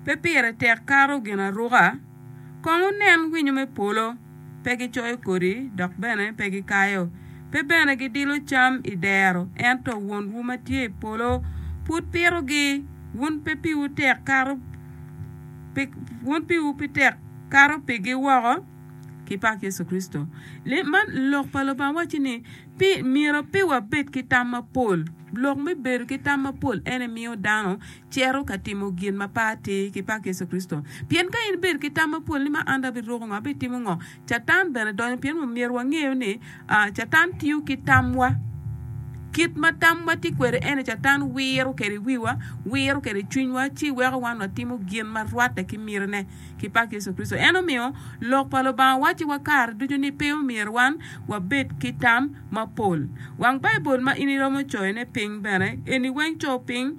Pe pire tek kato ginaruka. Kong wunen winyo me polo, pe gicoyo kodi, dok bene pe gikayo, pe bene gidilo cam i dero, ento Wonwu ma tye i polo pud pitogi. Wun pe piwu tek kato pi, wun piwu pe tek kato pigi woko? Kipak Yecu Kricito. Lok pa Lubanga wacci ni, Pi myero pe wabed ki tam mapol, Lok me bedo ki tam mapol ene miyo dano cito ka timo gin ma pe atir ki pak Yecu Kricito. Pien ka in ibedo ki tam mapol ni ma an dong abiruko ngo, abitimo ngo, Catan bene donyo. Pien omyero wangeyo ni Catan tiyo ki tamwa. Kit ma tamwa tye kwede ene Catan wiro kwede wiwa, wiro kwede cwinywa, ci weko wan watimo gin ma rwatte ki mitine. ki pak Yecu Kricito. En omiyo Lok pa Lubanga wacciwa kare ducu ni pe omyero wan wabed ki tam mapol. Wang Baibul ma in iromo coyone piny bene eni weng co piny,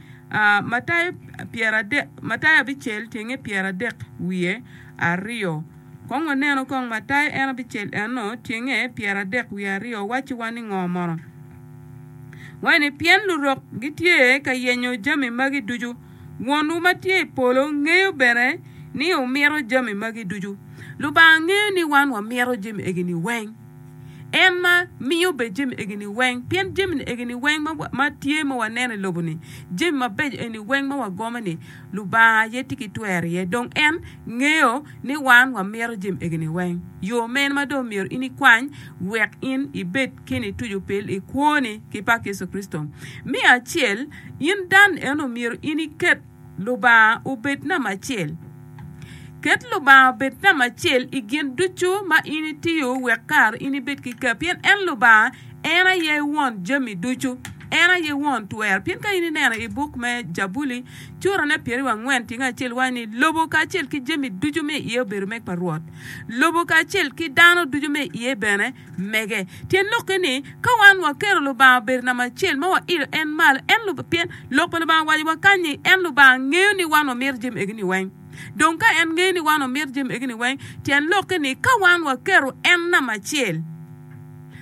Matayo pyeradek, Matayo abicel tyenge pyeradek wiye aryo. Kong wanenu kong Matayo en abicel enno tyenge pyeradek wiye aryo wacciwa ni ngo mono? Waci ni, Pien lurok gitye ka yenyo jami magi ducu, Wonwu ma tye i polo ngeyo bene ni wumito jami magi ducu. Lubanga ngeyo ni wan wamito jami egi-ni weng. En ma miyo bene jami egi-ni weng, pien jami egi-ni weng ma, ma tye ma waneno i lobo-ni, jami mabeco eni weng ma wagomo-ni, Lubanga aye tye ki twero iye. Dong en ngeyo ni wan wamito jami egi-ni weng. Yo mene ma dong myero in ikwany wek in ibed ki nitucu pil i kwoni ki pak Yecu Kricito? Me acel, In Dan en omyero in iket Lubanga obed namba acel. Ket Lubanga obed namba acel i gin ducu ma in itiyo wek kare in ibed ki ker, pien en Lubanga en aye Won jami ducu, en aye Won twer. Pien ka in ineno i buk me Jabuli, curane pyeraryo angwen tyeng acel waco ni, Lobo kacel ki jami ducu me iye obedo meg pa Rwot, lobo kacel ki dano ducu me iye bene. mege. Tyen lokke ni, ka wan waketo Lubanga obedo namba acel ma wailo en malo, en Lub-, pien lok pa Lubanga waco wakany ni, en Lubanga ngeyo ni wan wamito jami egi-ni weng. Dong ka en ngeyo ni wan wamito jami egi-ni weng, tyen lokke ni ka wan waketo en namba acel,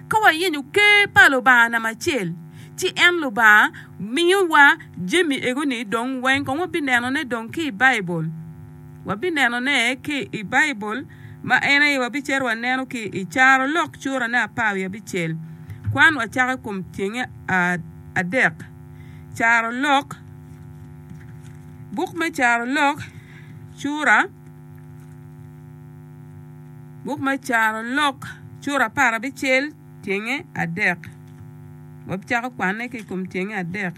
ka wayenyo ker pa Lubanga namba acel, ci en Lubanga miyowa jami ego-ni dong weng kong wabinenone dong ki i Baibul. Wabinenone ki i Baibul, ma en aye wabicito waneno ki i Carolok curane apar wiye abicel. Kwan wacako i kom cenge adek. Carolok, Buk me Carolok cura, Buk me Carolok cura apar abicel. Tyenge adek. Wabicako kwanne ki i kom tyenge adek.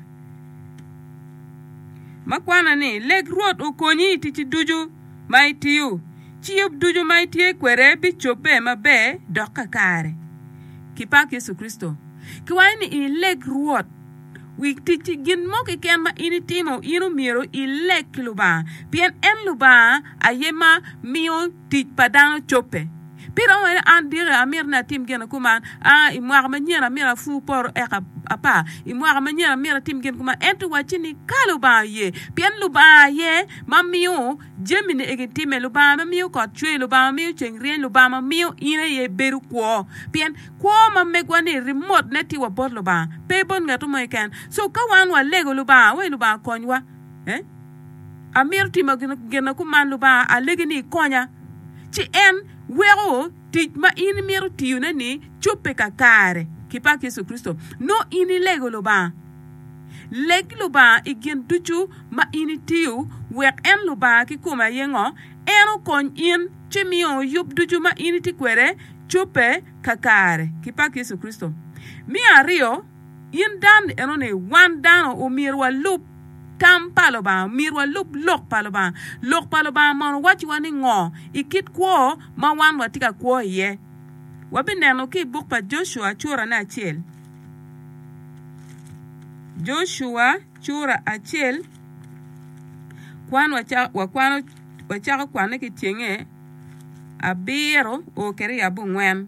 Ma kwana ni, Leg Rwot okonyi i ticci ducu ma itiyo, ci yub ducu ma itye kwede bicobbe maber dok kakare. Kipak Yecu Kricito. Kiwaco ni ileg Rwot wi ticci. Gin mo keken ma in itimo, in omyero ileg ki Lubanga, pien en Lubanga aye ma miyo tic pa dano cobbe. Pi romo meno, an diki amito ni atim gin kuman. A I mwaka manyen amyero apur poto eka apar. I mwaka manyen amyero atim gin kuman. Ento wacci ni, Ka Lubanga oye. Pien Lubanga aye ma miyo jamini egi timme. Lubanga ma miyo kot cwer, Lubanga ma miyo ceng ryeny, Lubanga ma miyo in aye ibedo kwo. Pien kwo ma megwa-ni rimotne tye wa bot Lubanga, pe bot ngato mo keken. So ka wan walego Lubanga, we Lubanga konywa. Amito timo gin kuman Lubanga alegi ni ikonya, ci en weko tic ma in imito tiyone ni cobbe kakare ki pak Yecu Kricito. Nongo in ilego Lubanga. Leg Lubanga i gin ducu ma in itiyo wek en Lubanga kikome aye ngo, en okony in ci miyo yub ducu ma in itye kwede cobbe kakare ki pak Yecu Kricito. Me aryo, In dan enoni, wan dano omyero walub tam pa Lubanga, omyero walub lok pa Lubanga. Lok pa Lubanga mono wacciwa ni ngo i kit kwo ma wan watye ka kwo iye? Wabineno ki i buk pa Jocua curane acel. Jocua cura acel, kwan wakwano, wacako kwanne ki cenge abiro o kwede i abongwen.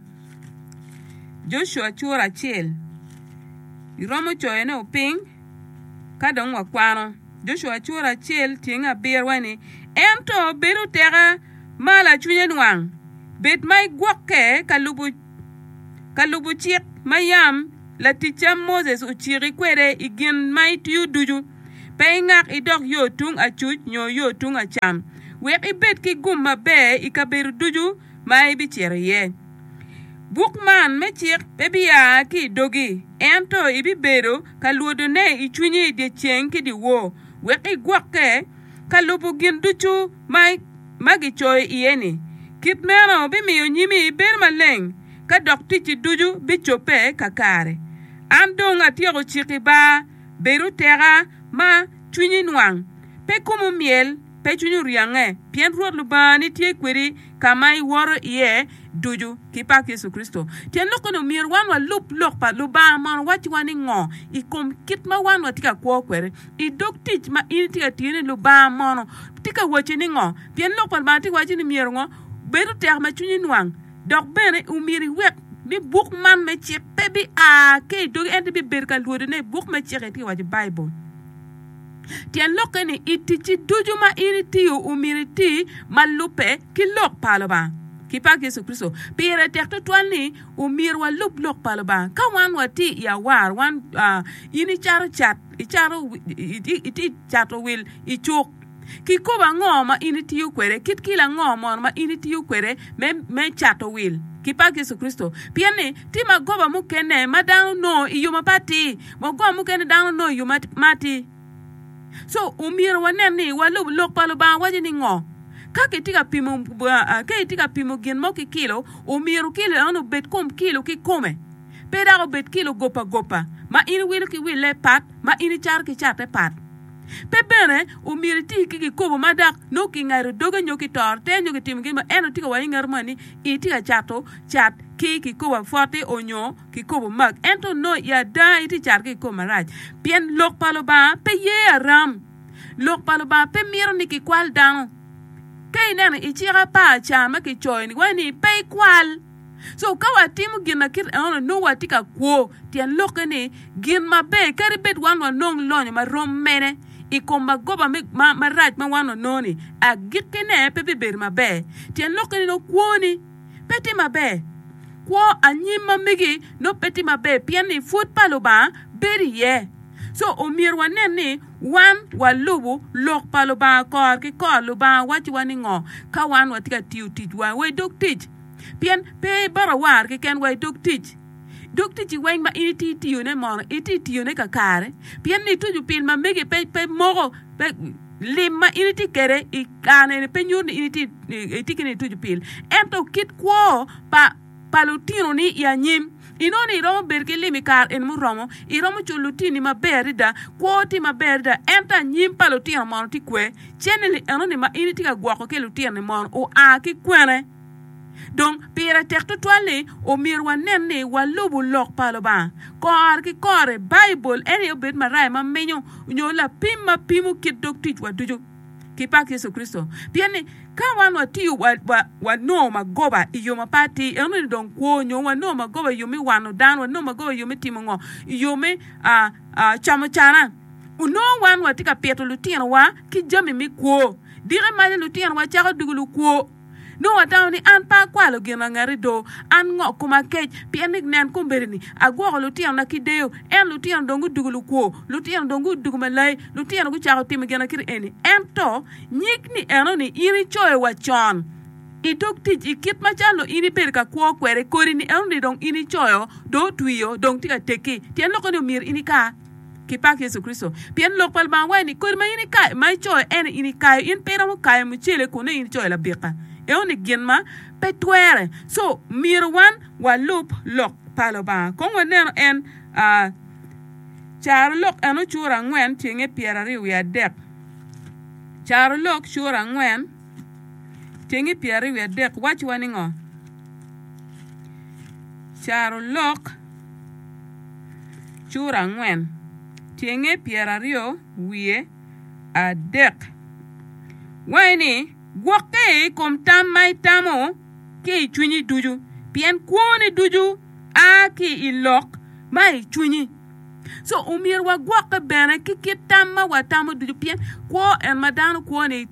Joshua cura acel iromo coyo ne oping ka dong wa kwano Joshua cura acel tyeng abiro wa ni ento bedo teka ma lacwinye nwang bed ma igwokke ka lubo ka lubo cik ma yam laticca Moses ociki kwede igin ma itiyo ducu pe ingak idok yo tung acuc nyo yo tung acam wek ibed ki gum maber ikabedo ducu ma ibicito iye. Buk man me cik pe bia ki i dogi, ento ibibedo ka lwodone i cwinyi i dyeceng ki dyewor, wek igwokke ka lubo gin ducu ma gicoyo iye-ni. Kit meno bimiyo nyimi bedo maleng, ka dok ticci ducu bicobbe kakare. An dong atyeko ciki ba, Bed oteka, ma cwinyi nwang, pe komu myel. Pe cwinyi oryange, pien Rwot Lubangani tye kwedi ka ma iwoto iye ducu. Ki pak Yecu Kricito. Tyen lok eni omyero wan walub lok pa Lubanga mono wacciwa ningo i kom kit ma wan watye ka kwo kwede? I dog tic ma in itye ka tiyone, Lubanga mono tye ka wacci ningo? Pien Lok pa Lubanga tye ka wacci ni myero ngo? Bed otek ma cwinyi nwang, dok bene omyero iwek ni buk man me cik pe bia ki i dogi ento ibibedo ka lwodone. Buk me cik-ki tye ka waco Baibul. Tyen lokke ni i ticci ducu ma in itiyo omyero iti ma lubbe ki Lok pa Lubanga ki pak Yecu Kricito. Pire tek tutwal ni omyero walub Lok pa Lubanga ka wan watye i awar. Wan, in icato cat, icato, itye ka cato wil i cuk ki kop ango ma in itiyo kwede, kit kilo ango mono ma in itiyo kwede me, me cato wil ki pak Yecu Kricito? Pien ni tye magoba mukene ma dano nongo i yo mapat-ti. Wa gwa mukene dano nongo yo ma atir. So omyero wa nen ni wa lubo lok pa Lubanga waco ni ngo. Ka ki tye ka pimo, ka itye ka pimo gin mo ki kilo, omyero kilo enoni obed kom kilo ki kome. Pe dok obed kilo gop a gopa, ma in iwilo ki wille pat, ma in icato ki cate pat. Pe bene omyero iti ki gikobo ma dok nongo ki ngado doge nyo ki toro te nyo ki timo gin mo, ento tye ka waco inget moni, itye ka cato cat ki kikobo apwote onyo. Kikobo Mark, ento onongo i ada itye cato ki i kor marac, pien Lok pa Lubanga pe ye aram. Lok pa Lubanga pe mito ni kikwal dano. Ka ineno i cik apar ca ma kicoyo-ni, waco ni pe ikwal. So, ka watimo gin ma kit eno-ni, nongo watye ka kwo. Tyen lokke ni, gin maber kadi bed wan wanong lonyo ma rom mene i kom magoba marac ma wan wanongo-ni, agikkine pe bibedo maber. Tyen lokke ni nongo kwoni. pe tye maber. Kwo anyim ma megi nongo pe tye maber pien ni pwod pa Lubanga bedo iye. So omyero wanen ni wan walubo lok pa Lubanga kor ki kor. Lubanga wacciwa ni ngo ka wan watye ka tiyo ticwa wa i dog tic? Pien pe ibata war keken wa i dog tic. Dog ticci weng ma in itye tiyone mono itye tiyone kakare pien ni ituco pil ma megi pe moko pe Lim ma in itye kwede i kare eni pe nyuto ni in itye ki niye ituc opil, ento kit kwo pa lutinoni i anyim. Inongo ni iromo bedo ki lim i kare eni muromo, iromo culo lutinoni maber adada, kwowu tye maber adada, ento anyim pa lutino mono tye kwer? Cennili enoni ma in itye ka gwoko ki i lutinoni mono oa ki kwene? Dong, pire tek tutwal ni omyero wanen ni walubo Lok pa Lubanga. Kore ki kore, Baibul en aye obed maraya ma menyo nyo lapim ma pimo kit dog ticwa ducu. Ki pak Yecu Kricito! Pien ni, ka wan watiyo wanongo magoba i yo mape atir, ento ni dong kwo nyo wanongo magoba i yo me wano dano, wanongo magoba i yo me timo ngo? I yo me camo cana. Onongo wan watye ka pito lutinowa ki jami me kwo. Dikke maca lutinowa cako doko lukwo. Nongo watamo ni, 'An pe akwalo gin angati do. An ngok koma akec, pien ni nen kombeddi-ni, agwoko lutinona ki deyo, ento lutino dong gudwogo lukwo, lutino dong gudwogo malayi, lutino gucako timo ginakite eni. Ento nyig ni enoni in icoyo wa con i dog tic, i kit macalo in ibedo ka kwo kwede, kodi ni enoni dong in icoyo, dong otwio, dong tye ka tekki, tyen lokke-ni omyero in ika. Kipak Yecu Kricito, pien Lok pa Lubanga waco ni, Kodi ma in ikayo, ma icoyo, en aye in ikayo. In pe iromo kayo mucele kun nongo in icoyo labika. Eno ni gin ma pe twere. So, myero wan walub Lok pa Lubanga. Kong wanenu en, aa, Carolok eno cura angwen tyenge pyeraryo wiye adek. Carolok cura angwen tyenge pyeraryo wiye adek wacciwa ni ngo? Carolok. cura angwen, tyenge pyeraryo wiye adek. Wange ni, Gwokke i kom tam ma itamo ki i cwinyi ducu, pien kwoni ducu a ki i lok ma i cwinyi. Co, omyero wagwokke bene ki kit tam ma watamo ducu, pien kwo en ma dano kwo-ni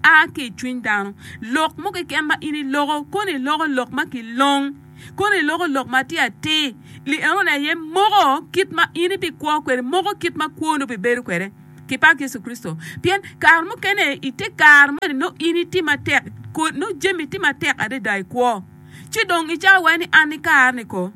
a ki i cwiny dano. Lok mo keken ma in iloko, koni iloko lok ma kilong. kono iloko lok matir atir, lienoni aye moko kit ma in ibikwo kwede, moko kit ma kwoni obibedo kwede. Kipak Yecu Kricito! Pien kare mukene i te kare moni nongo in itye matek, nongo jami tye matek adada i kwo. Ci dong icako iwaco ni, 'An ikare-ni ko?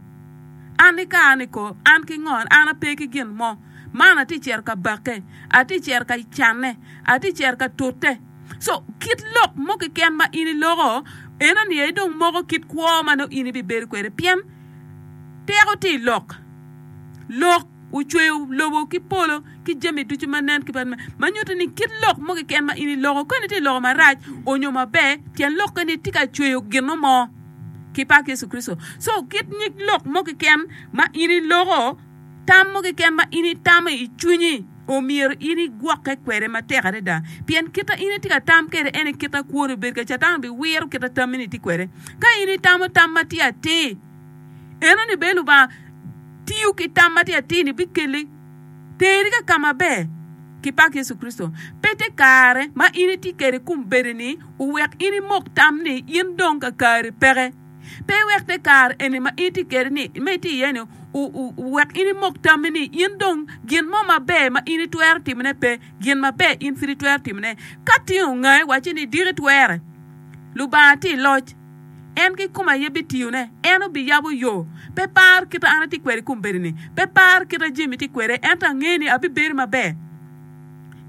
An ikare-ni ko? An ki ngo? An ape ki gin mo. Man atye ka cito ka bakke, atye ka cito ka canne, atye ka cito ka tute. So kit lok mo keken ma in iloko eno ni aye dong moko kit kwo ma nongo in ibibedo kwede pien teko tye i lok. Lok ocweyo lobo ki polo ki jami ducu ma nen ki ma nyuto ni kit lok mo keken ma in iloko koni tye loko marac onyo maber tyen lok keni tye ka cweyo gino mo ki pak Yecu Kricito. So kit nyig lok mo keken ma in iloko tam mo keken ma in itamo i cwinyi omyero in igwokke kwede matek adada, pien kit ma in itye ka tam kwede en aye kit ma kwoni obed kwede. Catan biwiro kit ma tammi-ni itye kwede. Ka in itamo tam matye atir, enoni bene Lubanga tiyo ki tam matye atir-ni bikeli teri ka ka maber. Kipak Yecu Kricito! Pe tye kare ma in itye kwede i kom bedo-ni owek in imok tam ni in dong kakari peke. Pe iwek te kare eni ma in itye kwede-ni, ma itye iye-ni, wek in imok tammi ni in dong gin mo maber ma in itwero timone pe. Gin maber in pud itwero timone. Ka tin ongai, wacci ni, 'Diki twerre. Lubanga tye i loc. En kikome aye bitiyone. En obiyabo yo. Pe par kite an atye kwede i kombeddi-ni. Pe par kite Jimmy tye kwede, ento angeni abibedi maber.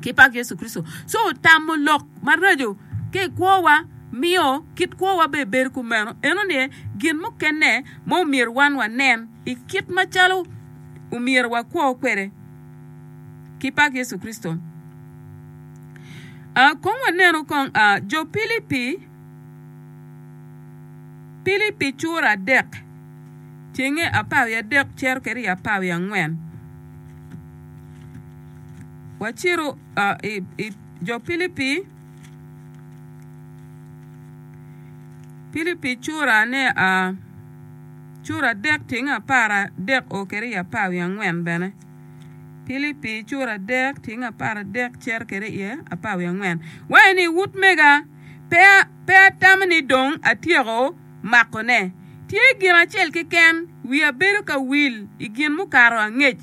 ki pak Yecu Kricito. Co tamo lok maraco ki i kwowa miyo kit kwowa bene bedo kumeno. Enoni aye gin mukene ma omyero wan wanen i kit macalo omyero wakwo kwede ki pak Yecu Kricito. Aa, kong wanenu kong aa, jo Pilipi, Pilipi cura adek, cenge apar wiye adek cito ki ryo apar wiye angwen. Wacitu i jo Pilipi, Pilipi cura ne a cura adek tyeng apar adek o kede i apar wiye angwen bene. Pilipi cura adek tyeng apar adek cito kede iye apar wiye angwen. Waye ni wut mega pe pe atamo ni dong atyeko makone. Tye gin acel keken wiya bedo ka wil i gin mukato angec.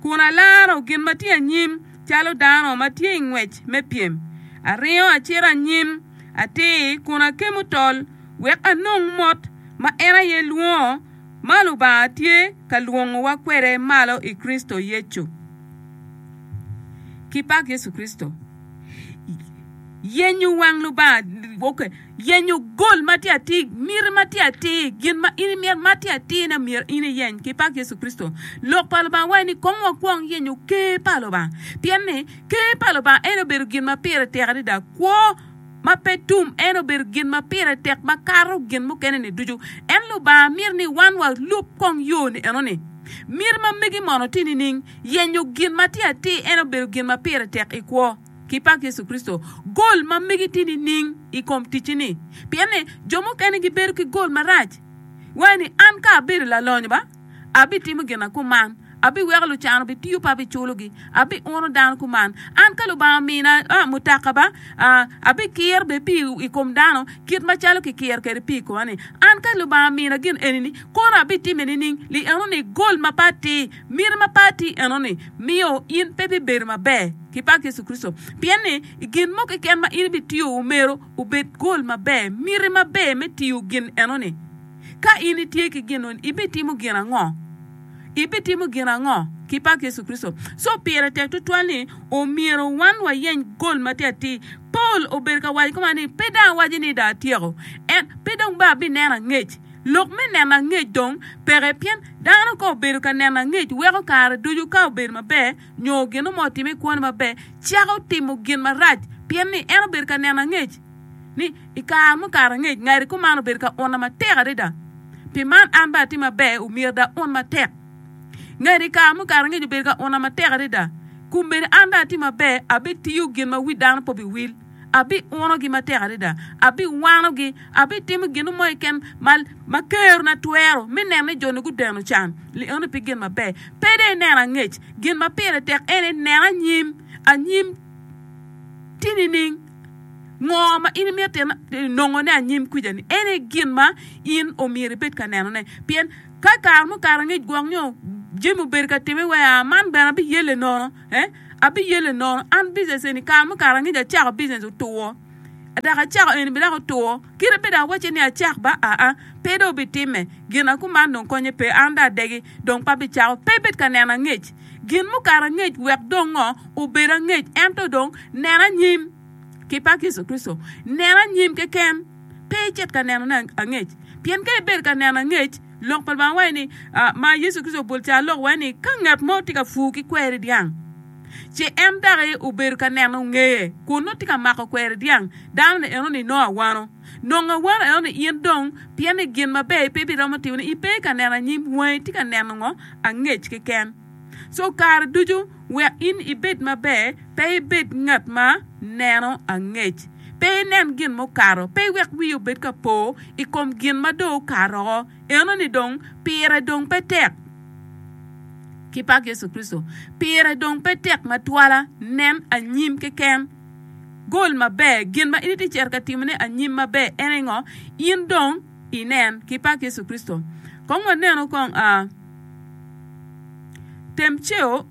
kun alaro gin ma tye anyim calo dano ma tye i ngwec me pyem. Aringo acito anyim atir kun akemo tol wek anong mot ma en aye lwongo ma Lubanga tye ka lwongowa kwede malo i Kricito Yecu. Kipak Yecu Kricito yenyo wang Lubanga. Yenyo gol ma tye atir, miti ma tye atir, gin ma in imito ma tye atir na myero in iyeny ki pak Yecu Kricito. Lok pa Lubanga waci ni kong wakwong yenyo Ker pa Lubanga, pien ni Ker pa Lubanga en obedo gin ma pire tek adada, kwo ma pe tum, en obedo gin ma pire tek makato gin mukene-ni ducu. Ento Lubanga mito ni wan walub kong yo-ni eno-ni. Miti ma megi mono tye nining? Yenyo gin ma tye atir en obedo gin ma pire tek i kwo. Ki pak Yecu Kricito, gol ma megi tye nining i kom ticci-ni? Pien ni jo mukene gibedo ki gol marac. Iwaco ni, 'An ka abedo lalonyo ba, abitimo gin ma kuman, abiweko lucan obitiyo pe abiculogi, abiuno dano kuman. An ka Lubanga omina mutaka ba, abikir bene pii i kom dano kit macalo kikiro kwede pii i koma-ni. An ka Lubanga omina gin eni-ni, kono abitimme nining? Li enoni gol ma pe atir. Miti ma pati enoni miyo in pe ibibedo maber ki bak Yecu Kricito, pien ni i gin mo keken ma in ibitiyo myero obed gol maber. Miti maber me tiyo gin enoni. Ka in itye ki gin enoni, ibitimo gin ango? Ibitimo gin ango ki bak Yecu Kricito? Co pire tek tutwal ni omyero wan wayeny gol matir atir. Paul obedo ka waco kuman ni, Pe dong awaco ni dong atyeko, ento pe dong ba abineno angec. Lok me neno angec dong peke pien dano ka obedo ka neno angec weko kare ducu ka obedo maber nyo gin mo otime i kwone maber cako timo gin marac pien ni en obedo ka neno angec ni i kare mukato angec ngati kuman obedo ka unna matek adada pi man an bene atim maber omyero dong aun matek. Ngati i kare mukato angec obedo ka unna matek adada kun bene an dong atim maber abitiyo gin ma wi dano pe obiwil. abiunogi matek adada, abiwanogi, abitimo gin mo keken ma, ma kerona twero me neno ni jo-ni gudeno can. Lieno pi gin maber, pe dong ineno angec. Gin ma pire tek en ni nen anyim, anyim tye nining? Ngo ma in imito nongone anyim kwija-ni? En aye gin ma in omyero ibed ka nenone. Pien ka kare mukato angec gwok nyo jami obedo ka timme wee aa, man bene abiyelle nono. Abiyelle nono an business eni kare mukato angec acako business otwo dok acako eni bene dok otwo kit ma dong awacce ni acak ba aa pe dong obitimme gina kuman dong konye pe an dong adegi dong pe abicako pe ibed ka nena angec gin mukato angec wek dong ngo obed angec ento dong nena anyim ki pa Yecu Kricito nena anyim keken. Pe icit ka nenone angec. Pien ka ibedo ka neno angec, Lok pa Lubanga waco ni, ma Yecu Kricito obol ca lok waco ni, ka ngat mo tye ka pur ki kweri dyang, ci en daki obedo ka neno ngeye kun nongo tye ka mako kweri dyang, dano-ni enoni nongo awano. Nongo awano enoni in dong, pien ni gin maber pe ibiromo timone. Ipe ka neno anyim, wangi tye ka neno ngo? Angec keken. So kare ducu wek in ibed maber, pe ibed ngat ma neno angec. Pe inen gin mukato, pe iwek wiyi obed ka po i kom gin ma dong okato woko, enoni dong pire dong pe tek. Ki pak Yecu Kricito, pire dong pe tek ma twala. Nen anyim keken. Gol maber gin ma in itye cito ka timone anyim maber. En aye ngo? In dong inen. Ki pak Yecu Kricito. Kong wanenu kong. Temceo,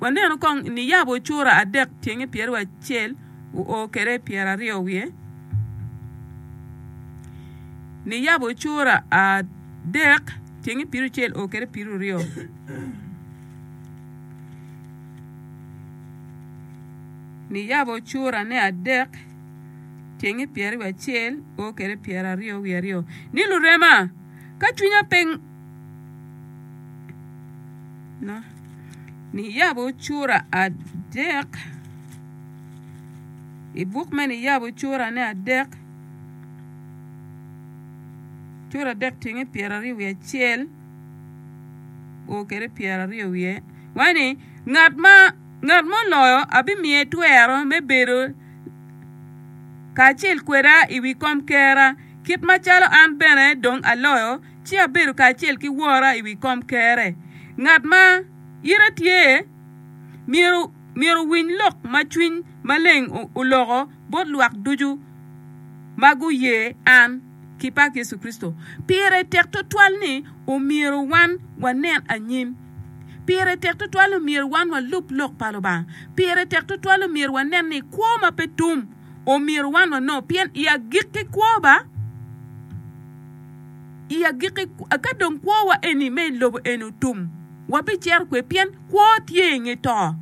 waneno kong ni yabo cura adek pyenge pyeraryo acel oo kede pyeraryo wiye. Ni yabo cura adek pyenge pyericel oo kede pyeruryo. Ni yabo cura ne adek pyenge pyeraryo acel oo kede pyeraryo wiye aryo. Ni lurema. ka cwinya pe niyabo cura adek i buk me niyabo curane adek cura adek tenge pyeraryo wiye acel o kede pyeraryo wiye waci ni ngat ma ngat ma oloyo abimiye twero me bedo kacel kweda i wi kom kera kit macalo an bene dong aloyo, ci abedo kacel ki Wora i wi komkerre. Ngat ma ite tye myero myero owiny lok ma Cwiny Maleng oloko bot lwak ducu ma guye an, ki pak Yecu Kricito. Pire tek twatwal ni omyero wan wanen anyim. Pire tek twatwal ni omyero wan walub lok pa Lubanga. Pire tek twatwal ni omyero wanen ni kwo ma pe tum. Omyero wanongo pien i agikki kwowa, i agikki ka dong kwowa eni me i lobo eni otum, wabicito kwe? Pien kwo tye i nge to.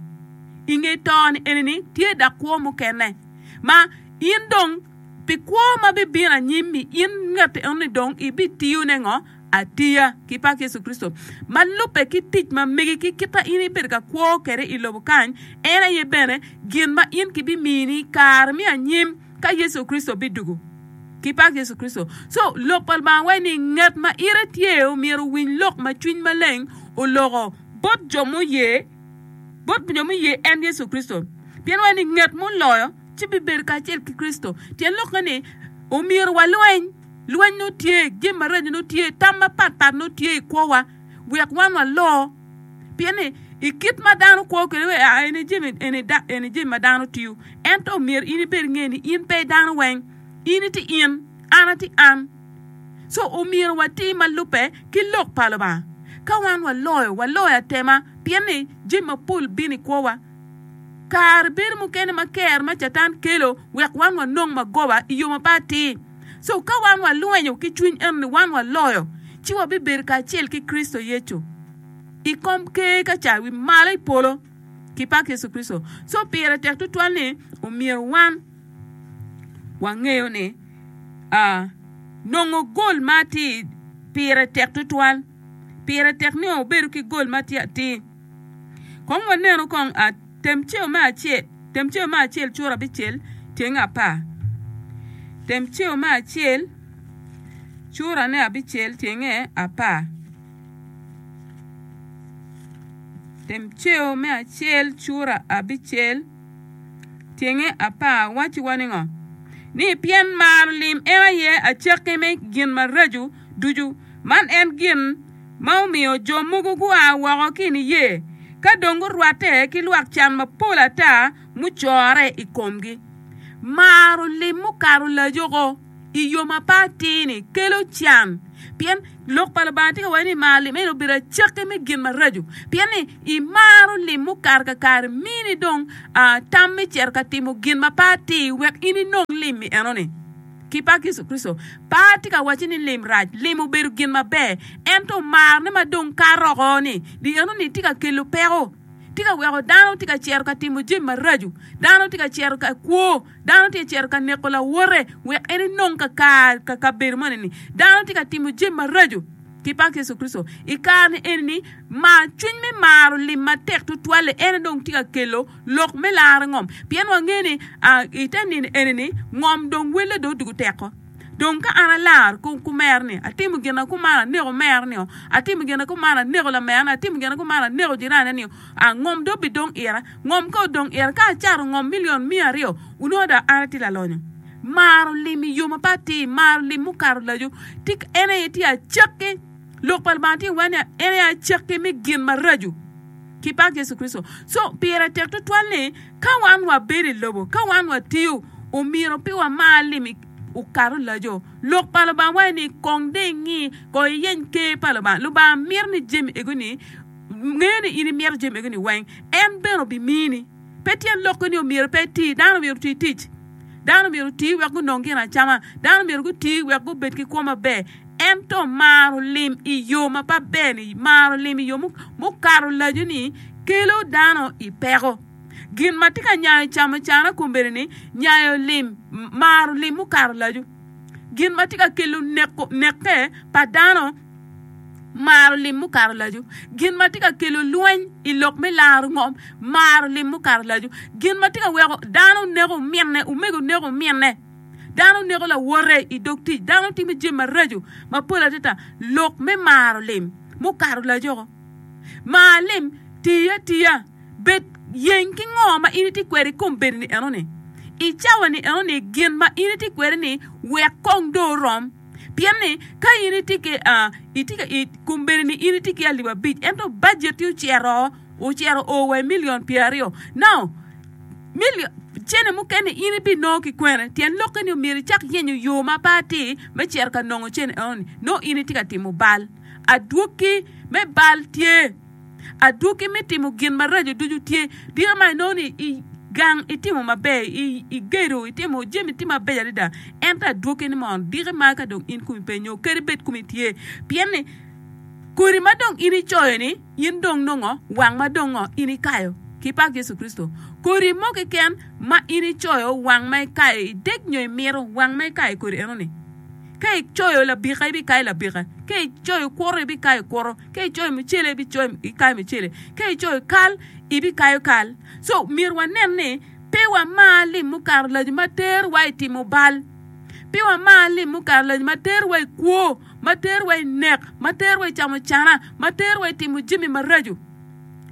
I nge to ni eni ni tye dak kwo mukene ma in dong pi kwo ma bibino anyim-mi in ngette eno ni dong ibitiyo ne ngo? atiya ki pak Yecu Kricito ma lubbe ki tic ma megi ki kit ma in ibedo ka kwo kwede i lobo kany, en aye bene gin ma in kibimini i kare me anyim ka Yecu Kricito bidugo. Ki pak Yecu Kricito! Co, Lok pa Lubanga waco ni, Ngat ma ite tye myero owiny lok ma Cwiny Maleng oloko bot jo muye, bot jo muye en Yecu Kricito. Pien waco ni, Ngat muloyo ci bibedo kacel ki Kricito. Tyen lokke ni, Omyero walweny. Lweny nongo tye, jami maraco nongo tye, tam mapat pat nongo tye i kwowa wek wan walo. Pien ni i kit ma dano kwo kwede ni aa eni jami eni da eni jami ma dano tiyo, ento myero in ibed inge ni in pe i dano weng, in iti in, an ati an. Co omyero wati ma lubbe ki lok pa Lubanga. Ka wan waloyo, waloyo atema, pien ni jami mapol bino i kwowa. Kare bedo mukene ma ker ma Catan kelo wek wan wanong magoba i yo ma pe atir. So ka wan walwenyo ki cwiny eno ni wan waloyo, ci wabibedo kacel ki Kricito Yecu i kom Ker ka ca wi malo i polo ki pak Yecu Kricito. So pire tek tutwal ni omyero wan wangeyo ni nongo gol ma atir pire tek tutwal. Pire tek ni obedo ki gol ma tye atir. Kong wanenu kong. Tem ceo me acel. Tem ceo me acel curo abicel tyeng apar. Tem ceo me acel curane abicel tyenge apar. Tem ceo me acel cura abicel tyenge apar wacci wa ningo? Ni pien maro lim en aye acakki me gin maraco. ducu. Man en gin ma omiyo jo mogo gua woko ki i niye ka dong gurwatte ki lwak can mapol ata mucorre i komgi. Maro lim mukato lajoko i yo ma pe atir-ni kelo can, pien Lok pa Lubanga tye ka waco ni maro lim eni obedo acakki me gin maraco. Pien ni imaro lim mukato kakare, mini dong tam me cito ka timo gin ma pe atir wek in inong lim-mi enoni. ki pak Yecu Kricito. Pe atye ka wacci ni lim rac. Lim obedo gin maber. Ento omarne ma dong kato oko-ni, di eno-ni tye ka kelo peko. Tye ka weko dano tye ka cito ka timo jami maraco. Dano tye ka cito ka kwo. Dano tye ka cito ka neko lawote wek en enong kakare ka kabedo moni-ni. Dano tye ka timo jami maraco. Ki pak Yecu Kricito, i kare-ni eni-ni, mar, cwiny me maro lim matek tutwal-li, en aye dong tye ka kelo lok me laro ngom, pien wangeyo ni i te nino eni-ni ngom dong welle dong odwogo teko. Dong ka an alar kumera-ni, atimo gin na kumaro, aneko merani, atimo gin na kumaro, aneko lamerani, atimo gin na kumaro, aneko jirane-ni, ngom dong bidong ira. Ngom ka odong ira, ka acato ngom milion miya aryo, wunongo dong an atye lalonyo. Maro lim i yo mapat-ti, maro lim mukato laco, tika en aye tye acakki? Lok pa Lubanga tye iwa ni en aye acakki me gin maraco. Kipak Yecu Kricito. So, pire tek tutwal ni ka wan wabedo i lobo, ka wan watiyo, omyero pe wamar lim i okato laco. Lok pa Lubanga waco ni kong dong ingi, kong iyeny Ker pa Lubanga. Lubanga mito ni jami ego-ni, ngeyo ni in imito jami ego-ni weng, en bene obimini. Pe tyen lokke ni omyero pe eti. Dano myero oti tic. Dano myero oti wek gunong gin acama. Dano myero guti wek gubed ki kwo maber. Ento maro lim i yo ma pe ber-ni, maro lim i yo mukato laco-ni kelo dano i peko. Gin ma tye ka nyayo camucana kombeddi-ni, nyayo lim, maro lim mukato laco. Gin ma tye ka kelo neko, nekke pa dano. Maro lim mukato laco. Gin ma tye ka kelo lweny i lok me laro ngom, maro lim mukato laco. Gin ma tye ka weko dano neko minne, omego neko minne, dano neko lawote i dog tic, dano timo jami maraco mapol adada, lok me maro lim mukato lacoko. Mar lim, ti atiya, bed yeng ki ngo ma in itye kwede i kom bedo-ni enoni. I cawa-ni enoni gin ma in itye kwede-ni wek kong dong orom. Pien ni ka in itye ki itye ka kombeddi ni in itye ki alip abic ento bajetti ocito ocito oo wa i milion pyeraryo nau milion cene mukene in ibinongo ki kwene? Tyen lokke ni myero icak yenyo yo ma pe atir me cito ka nongo cene enoni nongo in itye ka timo bal. Adwogi me bal tye. Adwogi me timo gin maraco ducu tye. Dika ma inongo ni i gang itimo maber, igedo, itimo jami tye mabeco adada, ento adwogi ni mono diki ma ka dong in kumi pe nyo kadi bed kumi tye. Pien ni kodi ma dong in icoyo-ni, in dong nongo wang ma dong ngo in ikayo. Ki pak Yecu Kricito! Kodi mo keken ma in icoyo wang ma ikayo, idek nyo imito wang ma ikayo kodi enoni. Ka icoyo labika, ibikayo labika, ka icoyo kwoto, ibikayo kwoto, ka icoyo mucele, ibikayo mucele, ka icoyo kal, ibikayo kal. So myero wanen ni pe wamar lim mukato lac ma terowa i timo bal, pe wamar lim mukato lac ma terowa i kwo, ma terowa i nek, ma terowa i camo cana, ma terowa i timo jami maraco.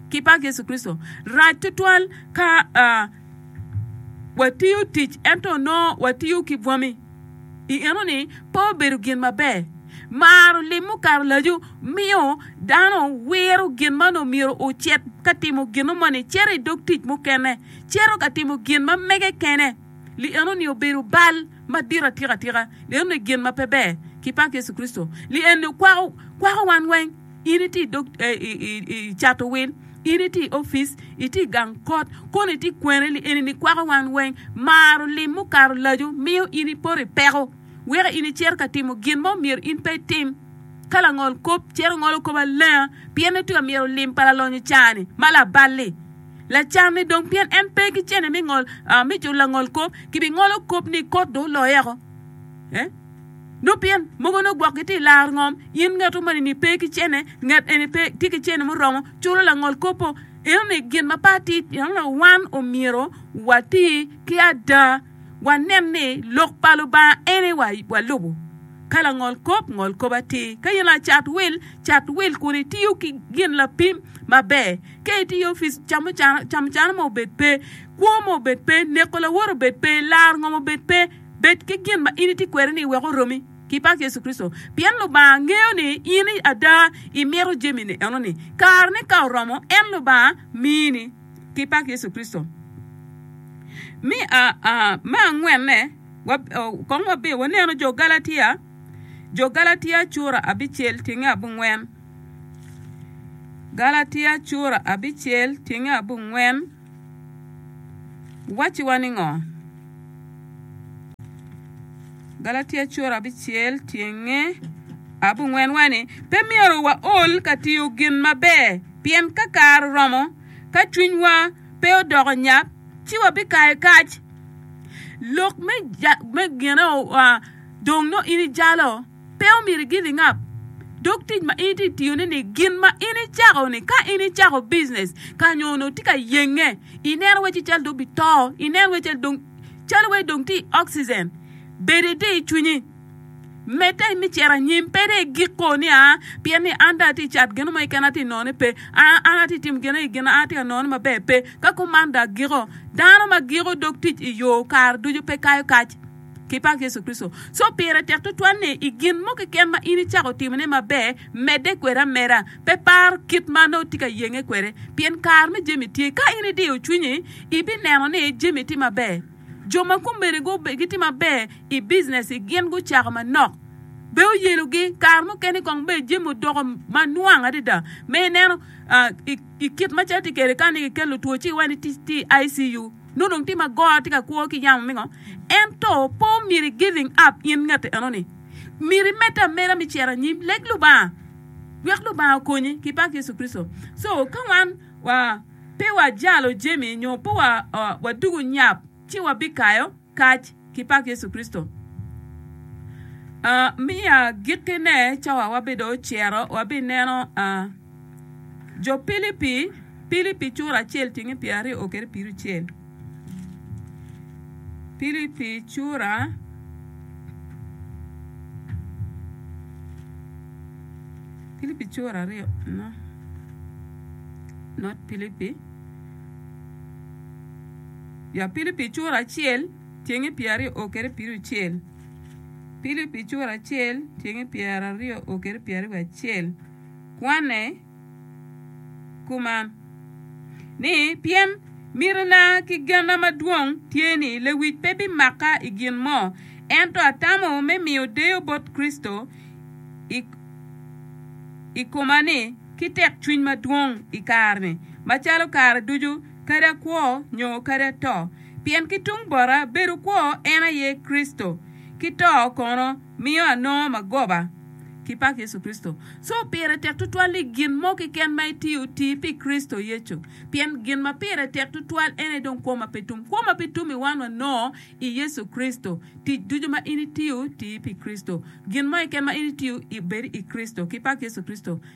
Ki pak Yecu Kricito, rac tutwal ka watiyo tic ento onongo watiyo ki bwami. I enoni pe obedo gin maber. Maro lim mukato lacu miyo dano wiro gin ma onongo myero ocit ka timo gino moni, cito i dog tic mukene, cito ka timo gin ma mege kene. Li enoni obedo bal madit atika tika. Li enoni gin ma pe ber. Kipak Yecu Kricito. Li enoni kwako, kwako wan weng. In itye i dog i cato wil, in itye i opic, itye i gang kot, kono itye kwene ni eni nikwako wan weng. Maro lim mukato laco miyo in ipoto i peko weko in icito ka timo gin mo myero in pe itim. Ka langol kop cito ngolo kop alenga pien ni tweka myero lim pa lalonyo cani ma labal-li lacanne dong pien en pe ki cene me ngol me culo langol kop. Kibingolo kop ni kot dong oloye oko. Nongo pien mogo nongo gwok gitye i laro ngom, in ngatu moni ni pe ki cene, ngat eni pe tye ki cene muromo culo langol kopo. Eno ni gin ma pe atir pien nongo wan omyero wati ki ada, wanen ni lok pa Lubanga en aye walubo. Ka langol kop, ngol kop atir. Ka in lacat wil, cat wil kun itiyo ki gin lapim maber. Ka itye i opic, camucana, camucana mo obed pe, kwo mo obed pe, neko lawote obed pe, laro ngom obed pe. Bed ki gin ma in itye kwede-ni i wek oromi ki pak Yecu Kricito, pien Lubanga ngeyo ni in ada imito jami-ni enoni. Kareni ka oromo, en Lubanga mini ki pak Yecu Kricito. Me angwenne, kong wabi wanenu jo Galatia, jo Galatia cura abicel tyenge abongwen, Galatia cura abicel tyenge abongwen. Wacciwa ni ngo? Galatia cura abicel tyenge abungwen waci ni pe myero waol ka tiyo gin maber, pien ka kare oromo, ka cwinywa pe odoko nyap, ci wabikayo kac. Lok me gine dong nongo in ijalo. Pe omyero igin ingap dog tic ma in itye ka tiyone ni. Gin ma in icako-ni, ka in icako bijinec ka nyo onongo itye ka yenge, ineno wai ci calo dong obito, ineno wai calo dong calo wai dong tye i oxygen, bedo itir i cwinyi, medde me cito anyim, pe dong igik koo ni aa pien ni an dong atye ka cat gin mo keken ma atye ka nonone pe, aa an atye ka timo gin aye gin, an atye ka nonone maber pe, ka kuman dong agiko. Dano ma giko dog tic i yo kare ducu pe kayo kac. ki pak Yecu Kricito. So pire tek tutwal ni i gin mo keken ma in icako timone maber, medde kwede ameda. Pe par kit ma nongo itye ka yenge kwede, pien kare me jami tye. Ka in idiyo cwinyi, ibineno ni jami tye maber. Jo ma kombeddi gitye maber i bicinessgi gin gucako manok, be oyelogi. Kare mukene kong bed jami odoko ma nwang adada ma ineno i kit macalo tye kwede ka nongo kiketo lutwo ci iwaco ni tye i ICU. Nongo dong tim ma goro tye ka kwo ki yam omingo. Ento pe omyero i giving up in ngete eno ni. Myero i medde ameda mi cito anyim leg Lubanga wek Lubanga okonyi ki pak Yecu Kricito. So ka wan wa pe wa jalo jemi nyo pe wa dugo nyap ci wa bi kayo kac. ki pak Yecu Kricito. Mi agikkine ca wa wabido ociro, wabineno Jo Pilipi, Pilipi cura acel tyenge pye aryo o kede piru cel. Pilipi cura Pilipi cura aryo no not Pilipi. Ya Pilipi cura acel tyenge pyeraryo o kede piricel Pilipi cura acel tyenge pyeraryo o kede pyeraryo wiye acel Kwanne kuman ni, Pien mitina ki genna madwong tye ni lewic pe bimakka i gin mo, ento atamo me miyo deyo bot Kricito i koma-ni ki tekcwiny madwong i kare-ni, macalo kare ducu kadi kwo nyo kadi ato, pien ki tung bota bedo kwo en aye Kricito, ki to kono miyo anongo magoba ki pak Yecu Kricito. Co pire tek tutwal ni gin mo keken ma itiyo, ti pi Kricito Yecu, pien gin ma pire tek tutwal en aye dong kwo ma pe tum. Kwo ma pe tum i wan wanongo i Yecu Kricito. Tic ducu ma in itiyo, ti pi Kricito. Gin mo keken ma in itiyo, bed i Kricito, ki pak Yecu Kricito.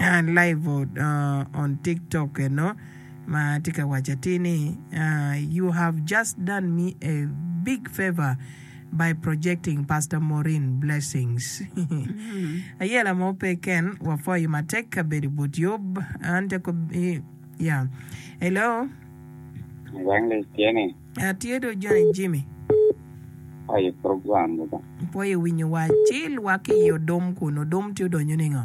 Live on TikTok eno ma tye ka waco atir ni, You have just done me a big favour by projecting Pastor Maureen. Blessings. Aye lamo pe ken wapwoyi matek ka bedo i but yub. An te ko yeah. Hello. Evangelist tye ni? Atye do Johnny Jimmy. Aye program mo ba. Pwoyo winyo wa ci lwak ki i odom kun odom tye odonyo ningo?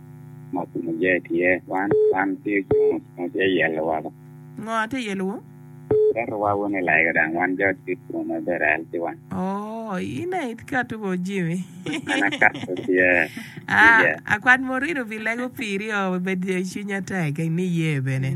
ma kumuje tye, wan, wan tye jo ma tye yelo woko. Ngo ma tye yelowu? Ketowa wun i lega dang wan jo cwit kun ma bedo al ki wan. Oh, in aye ikatu wa Jimmy. An akato tye. Ah, akwat ma orino pi lego piri oo, bed cwinya tek, niye bene.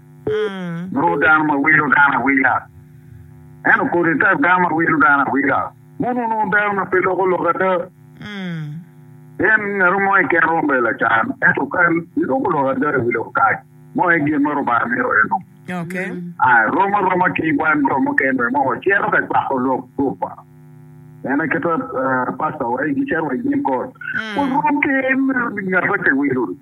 Lwor dano ma wilo dano awila, ento kodi tek dano ma wilo dano awila. Mon onongo dano ma pe loko lok ada, pien ngat mo i keno romo bedo lacan, ento ka iloko lok ada i wi lok kac mo aye gin ma Rubanga mito enok. Rom aroma ki wan jo mukene bene ma wacito ka cwako lok gurup-pa, pien aketa pastawa aye gicito wa i nyim got, warom ki ngat ma kiwilo-ni.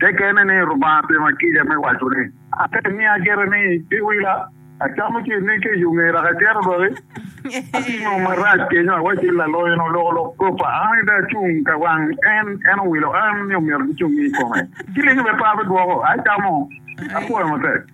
Te kene ni Lubanga opima kica me waco ni, Ata imiya kite ni giwila, acamo ci inegga i yo ngera ka cito doki? Atimo marac kenyo, awacci ni lalonyo-ni oloko lok kopa, an aye dong acung ka wang en, en owilo an ni omyero gicung ni i kome. Kilingo bene pe abidwoko, acamo, apwoyo matek.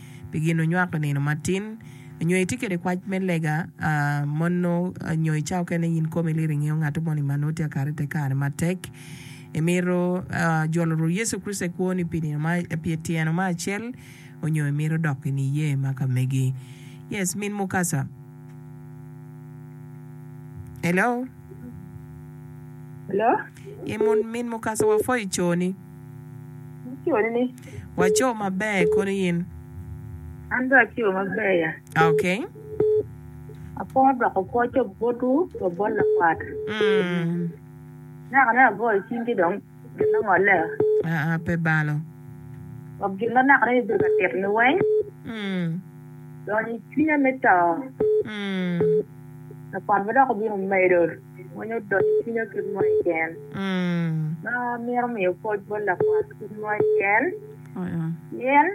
pi gin onywako i nino matin, nyo itye kede kwac me lega mono nyo i cawa okene in komi iliro ingeyo ngato moni ma nongo tye ka kare ite kare matek. Imito jolo Rwot Yecu Kricito i kwoni pi nino ma pi etyeno ma acel onyo imito dok i niye ma ka megi? Yes, Min Mukasa. Hello? Hello? Ee, Min Mukasa wapwoyo coni. Niconi ni. Waco maber kono in. An be aco maber ya. Okay. Apo doko pwoco botwu wa bot lakwat. Mm. Naka ne agoyo cingi dong gin ma ngolle. Ah, ah, pe balo. Wa gin ma naka ne ibedo ka tit ni weng. Mm. Donyo i cwinya me to. Mm. Lakwat be dok obino medo. Winyo dot i cwinya kit mo i gen. Ma mito miyo pwoc bot lakwat kit mo i gen. Pien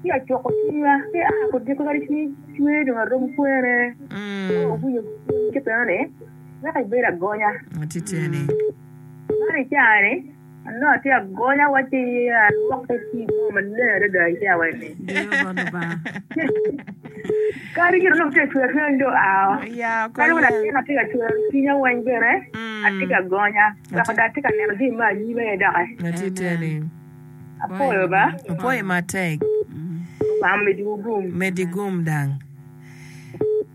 ci acwoko cwinya ci aa kodiko kadi cwiny cwer dong arom kwene. Owinyo cwiny ki bene ni weko ibedo agonya. Man icani. Anongo atye agonya wa ci alwokke ki i mo maleng adada i cawa-ni. Kadi gire onongo tye ka cwer cwiny do ao. Kadi wun atin atye ka cwer cwinya weng bene atye ka gonya wek dong atye ka neno jami me anyima aye doki. Apwoyo ba. Lubanga omedwu gum.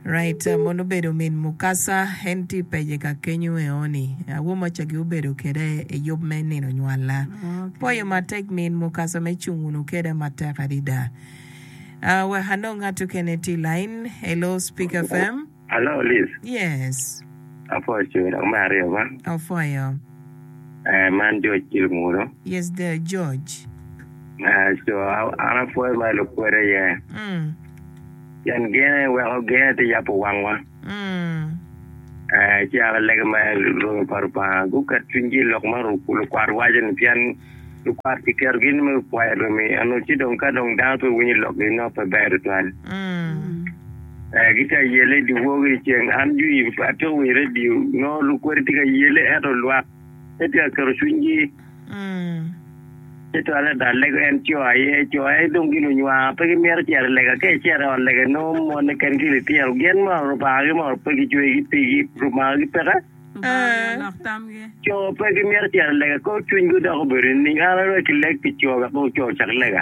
Right mon obedo min mukasa en tye pece ka kenyo eoni awo moca gi obedo kede eyub me nino nywala poyo matek min mukasa me cung wunu keda matek adida ah wek anong ngat okene tye lain hello speaker fm Hello Liz. Yes. Apwoyo coo dok me aryo ba. Opwoyo. Eh man George ki Lungudo. Yes dear George. Eh coo an apwoyo ma i lukwede aye. Mm. Pien gene weko gene te yabo wangwa. Eh, caro lege ma lwongo pa Lubanga guket cwinygi i lok ma lukwat waco-ni, pien lukwat kiketo gin me pwoyo romi eno, ci dong ka dong dano pe winyo lokgi, nongo pe ber tutwal. Eh, gitye ka yele i dyewor ki dyeceng. An jwi pe atwero winyo redio, nongo lukwodi tye ka yele ento lwak. pe tye ka keto cwinygi. Ci twale adada lego en coo aye, coo aye dong gin onywa pe gimito cito i lega, ka icito i ot lega inongo mone keken ki litino gin ma Lubangagi ma pe gicwegi pigi, Lubangagi peke. Coo pe gimito cito i lega, kor cwiny gi odoko obedo nining? An adong ki leg pi coo wek dong coo ocak lega.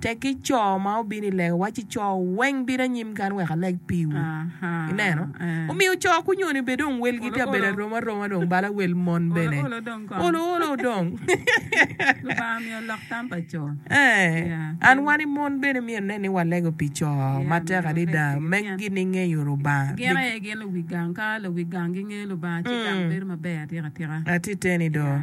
Tekki co ma obino i lega, wacci co weng bino anyim kany wek aleg piwu. Ineno? Omiyo co kunyoni bene dong welgi tye abedo arom aroma dong bala wel mon bene. Olo olo dong. Lubanga omiyo lok tam pa co. Ee, an wani mon bene myero nen ni walego pi co matek adada me gini ngeyo Lubanga. Gin aye gin luwi gang. Ka luwi gang gingeyo Lubanga ci gang bedo maber atika tika. Atiteni do.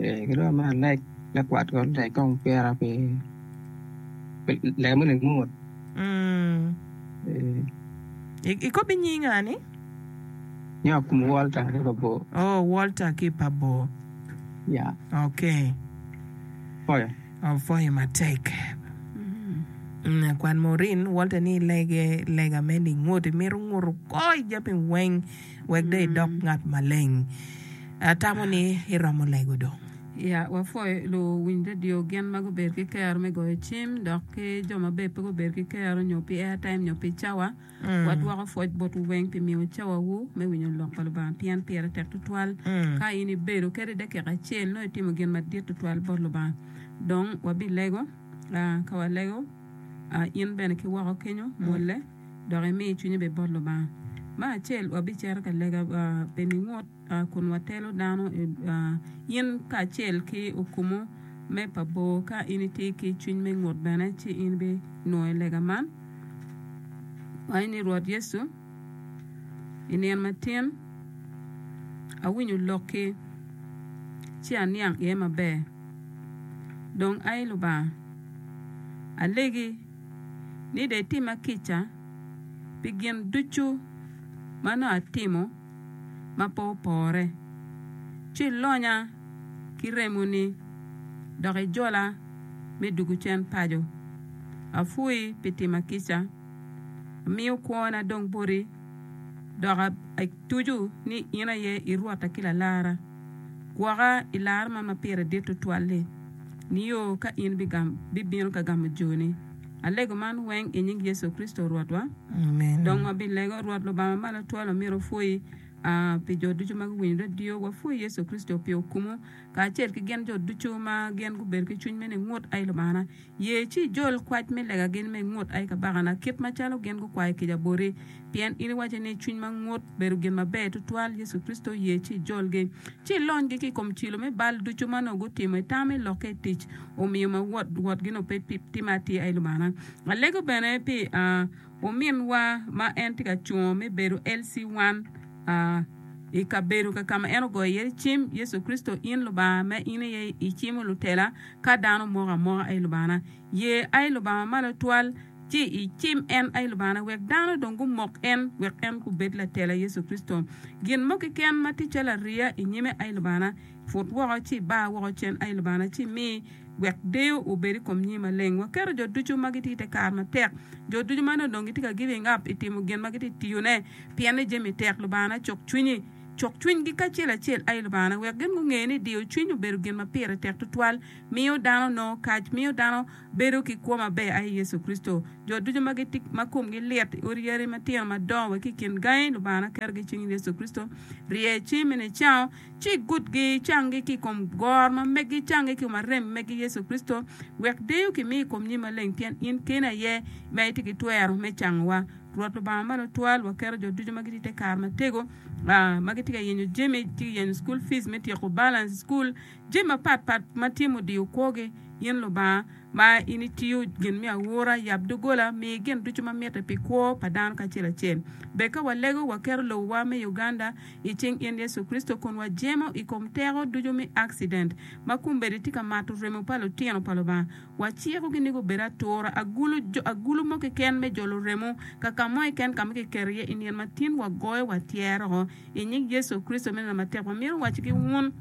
Gidong ma leg lakwat ko leg kong pira pi lega mo leg mot. Ikobbi nying ani? Nyinga kum Walter ki pa bor. Oh, Walter ki pa bor. Ya. Okay. Foyo. Oh, foyo matek. Kwan Maureen, Walter ni lege lega me lingut, imito nguto kor jami weng. wek dong idok ngat maleng. Atamo ni iromo lego dong. Ya wapwoyo luwiny redio gin ma gubedo ki kero me goyo cim dok ki jo ma bene pe gubedo ki kero nyo pi airtime nyo pi cawa. Wadwoko pwoc botwu weng pi miyo cawawu me winyo Lok pa Lubanga pien pire tek tutwal. Ka in ibedo kadi dakika acel nongo itimo gin madit tutwal bot Lubanga. Dong wabilego. Ka walego, in bene ki woko kenyo mwolle. dok imi cwinyi bed bot Lubanga. Me acel, wabicito ka lega pi ningut kun watelo dano in kacel ki okumu me pa bor. Ka in itye ki cwiny me ngut bene ci in ibinongo i lega man. Wanyo ni, Rwot Yecu, i nino matin awinyo lokki ci aniang iye maber. Dong ai Lubanga, alegi. ni dong itimma kica pi gin ducu ma nongo atimo ma pe opore, ci ilonya ki remoni dok ijola me dwogo cen paco. Apwoyi pi timma kica, amiyo kwona dong boti, dok atuco ni in aye i Rwotta ki Lalarra. Gwoka i lar man ma pire dit tutwal-li, nio ka in bibino ka gamo joni. Alego man weng i nying Yecu Kricito Rwotwa. Dong wabilego. Rwot Lubanga Malo Twal omyero opwoyi pi jo ducu ma guwinyo redio. Wapwoyi Yecu Kricito pi okumu, kacel ki gin jo ducu ma gin gubedo ki cwiny me ningut. Ai Lubangana, Ye ci ijol kwac me lega gin me ngut, ai kabakana, kit ma calo gin gukwayo kica boti. Pien in iwaco ni, Cwiny ma ngut bedo gin maber tutwal, Yecu Kricito, ye ci ijolgi, ci ilonygi ki i kom cilo me bal ducu ma nongo gutimo, itamo i lokke i tic, omiyo ma wot wotgi nongo pe pi timme atir, ai Lubana. Alego bene pi, aa, ominwa ma en tye ka cungo me bedo LC wan, aa, i kabedo ka ka ma en ogoyo iye cim, Yecu Kricito, in Lubanga, ma in aye icimo lutela, Ka dano moko amoka aye Lubangana, ye aye Lubanga malo twal, ci icim en aye Lubangana, wek dano dong gumok en, wek en gubed latela Yecu Kricito. Gin mo keken ma tye calo ariya i nyime aye Lubangana, put woko ci iba woko cen aye Lubangana, ci imi wek deyo obed i kom nyingi maleng. Waketo jo ducu ma gitye i te kare matek, jo ducu ma nongo dong gitye ka giving up i timo gin ma gitye tiyone, pien ni jami tek. Lubangana cuk cwinyi. cok cwinygi kacel acel aye Lubangana wek gin gunge ni diyo cwiny obedo gin ma pire tek tutwal, miyo dano nongo kac, miyo dano bedo ki kwo maber aye Yecu Kricito. Jo ducu ma gitik ma komgi lit i odi yari matino madongo wa ki i kin gangi, Lubangana ketogi i cing Yecu Kricito. Rye ci me nicawo, ci igutgi, icanggi ki i kom gor ma megi, icanggi ki i kom arem megi Yecu Kricito, wek deyo kimi i kom nyim maleng pien in keni aye ma itye ki twero me cangowa. Rwot Lubanga ma Lutwal waketo jo ducu ma gitye i te kare matego, ma gitye ka yenyo jami, gitye ka yenyo cukul pic me tyeko balance cukul, jami mapat pat ma tye mudiyo kwogi. In Lubanga, ma in itiyo gin me aura, yab doggola, mi gin ducu ma mitte pi kwo pa dano kacel acel. Bed ka walego, waketo lobowa me Uganda i cing in Yecu Kricito, kun wajemo i kom teko ducu me accident ma kombeddi tye ka mato remo pa lutino pa Lubanga. Wacikogi ni gubed atura, agulu, jo, agulu mo keken me jolo remo, ka ka mo keken ka ma kiketo iye i nino ma tin, wagoyo wa tyero-o. I nying Yecu Kricito, me neno matek, wamito wacci-gi wun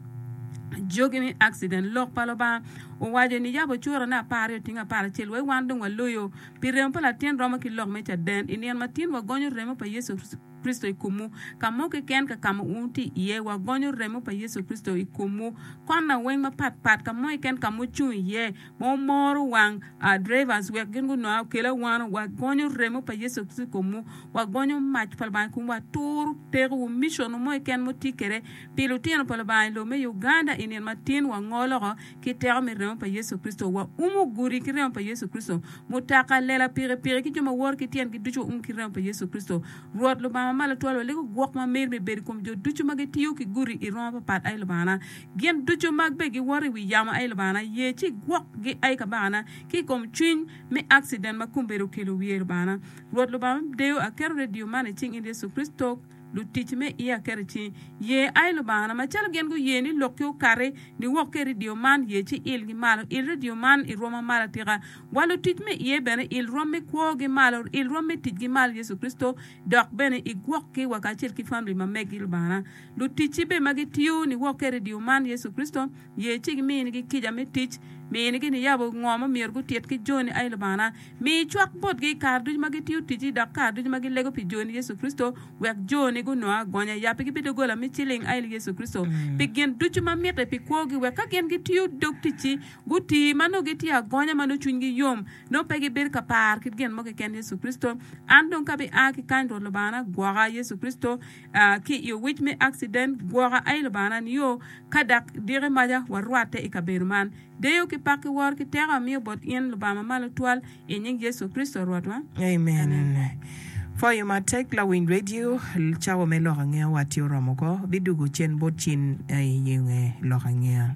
jogi ni, Accident, Lok pa Lubanga owaco ni, Yab ocurane apar aryo otinge apar acel, wai wan dong waloyo, pi remo pa latin romo ki lok me caden. I nino ma tin, wagonyo remo pa Yecu Kricito. Kricito i komwu. Ka mo keken ka ka ma wun wutye iye, wagonyo remo pa Yecu Kricito i komwu. Konna weng mapat pat ka mo keken ka ma wucung iye, ma wumoro wang drivers wek gin gunonga okel awano. Wagonyo remo pa Yecu Kricito i komwu. Wagonyo mac pa Lubanga i komwu. Waturu tekowu. Missionwu mo keken ma wutye kwede pi lutino pa Lubanga i lobo me Uganda i nino matin wango loko. Ki teko me remo pa Yecu Kricito, waumo gudi ki remo pa Yecu Kricito, mutoka, lela, pikipiki, ki jo ma woro ki tyengi ducu waum ki remo pa Yecu Kricito. Rwot Lubanga ma Malo Twal walego gwok ma meri me bedo i kom jo ducu ma gitiyo ki gudi i roo mapapat, ai Lubangana. Gin ducu ma be giwoto i wi yamo, ai Lubangana, ye ci igwokgi, ai Kabakana, ki i kom cwiny me akciden ma kombeddi okelo wiye, Lubangana. Rwot Lubanga me deyo, aketo redio man i cing In Yecu Kricito. Lutic me ia keri ci ye ai Lubangana. Macalo gin guye ni lokki okati, niwok ki i redio man, ye ci ilgi malo. Il redio man i rwoma malo atika. Wa lutic me iye bene, il rwom me kwogi malo, il rwom me ticgi malo Yecu Kricito, dok bene igwokki wa kacel ki famili ma meggi Lubangana. Luticci bene ma gitiyo, niwok ki i redio man Yecu Kricito. Ye ci giminigi kica me tic, minigi niyabo ngo ma myero gutit ki joni, ai Lubangana, mi icwak botgi i kare ducu ma gitiyo ticci dok kare ducu ma gilego pi joni, Yecu Kricito, wek joni gunong agonya. Yappigi pi doggola me ciling, ai Yecu Kricito, pi gin ducu ma mitte pi kwogi, wek ka gin gitiyo dog ticci, guti ma nongo gitye agonya ma nongo cwinygi yom, nongo pe gibedo ka par kit gin mo keken, Yecu Kricito. An dong ka abi a ki kany, Rwot Lubangana, gwoka, Yecu Kricito. ki i owic me akciden, gwoka aye Lubanga-na nio, ka dak diki maca warwatte i kabedo man. Deyo ki pak ki woro ki teko amiyo bot in, Lubanga ma malo twal, i nying Yecu Kricito Rwotwa. Amen. Pwoyo matek lawiny redio, cawa me lok angeya wa tye oromo ko. Bidwogo cen bot cin aye i nge lok angeya.